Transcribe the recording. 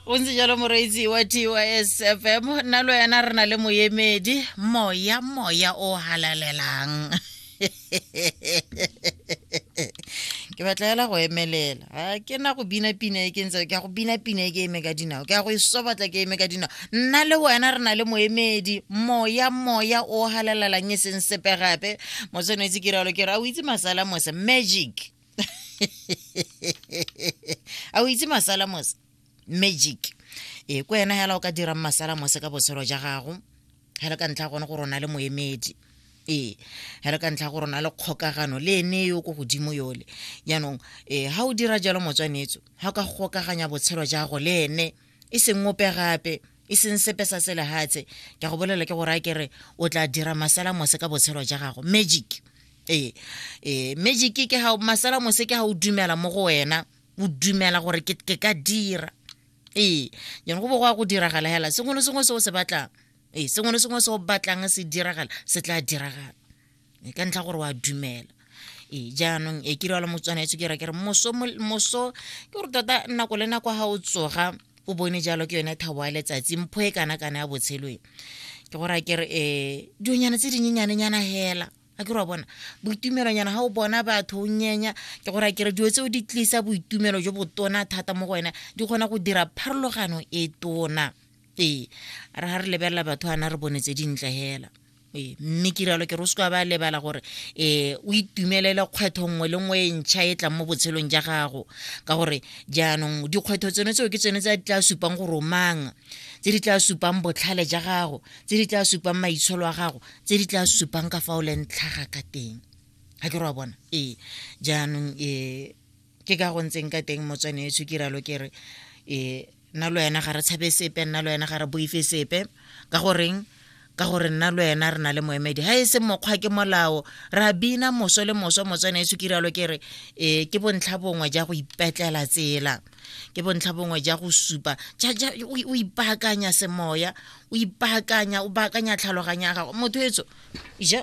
o ntse jalo moreetsi wa tys fm nna lo ena re na le moemedi moya moya o halalelang ke batla hela go emelela ga ke na go bina pina e ke ntse ke ya go bina pina e ke eme ka dinao ke ya go e sobatla ke eme ka dinao nna le wena re na le moemedi moya moya o halalelang e seng sepe gape motsenetsi ke ralo ke re a o itse masala mose magic a o itse masala mose magic e ko ena hela o ka dirang masala mose ka botshelo ja gago hele ka ntlha gone gore o na le moemedi ee hele ka ntlha gore o na le kgokagano le ene yo ko godimo yole jaanong ee ga o dira jalo motswanetso ga o ka gokaganya botshelo jago le ene e seng ope gape e seng sepe sa selehatshe ke go bolela ke gore a ke re o tla dira masala mose ka botshelo ja gago magic ee ee magic ke ga masala mose ke ga o dumela mo go wena o dumela gore ke ka dira ee jone go bo go ya go diragala hela sengwe le sengwe se o se batlang ee sengwe le sengwe se o batlang se diragala se tla diragala e ka ntlha gore wa dumela ee jaanong e kire wa le motswana etso ke ra ke re moso moso ke gore tota nako le nako ga o tsoga o bone jalo ke yone thabo ya letsatsi mpho e kana kana ya botshelo e ke gore a kere um dionyana tse dinyenyanenyana fela a ke re wa bona boitumelonyana ga o bona batho o nyenya ke gore a kere dilo tse o di tlisa boitumelo jo botona thata mo go wena di kgona go dira pharologano e tona ee a re ga re lebelela batho ana re bone tse dintle hela ee mme ke rialo ke re o seka ba lebala gore ee o itumelele kgwetho nngwe le nngwe e ntšha e tlang mo botshelong ja gago ka gore jaanong dikgwetho tsone tseo ke tsone tse di tla supang gore o mang tse di tla supang botlhale ja gago tse di tla supang maitsholo a gago tse di tla supang ka fa o leng tlhaga ka teng ga ke re wa bona ee jaanong ee ke ka go ntseng ka teng motswane e ke ralo ke re um nna le wena ga re tshabe sepe nna le wena ga re boife sepe ka goreng ka gore nna le wena re na le moemedi ga e se mokgwa ke molao ra bina moso le moso motswane e ke ralo ke re um ke bontlha bongwe ja go ipetlela tsela ke bontlha bongwe ja go supa o ipaakanya semoya o ipaakanya o baakanya tlhaloganyo ya gago motho etso ja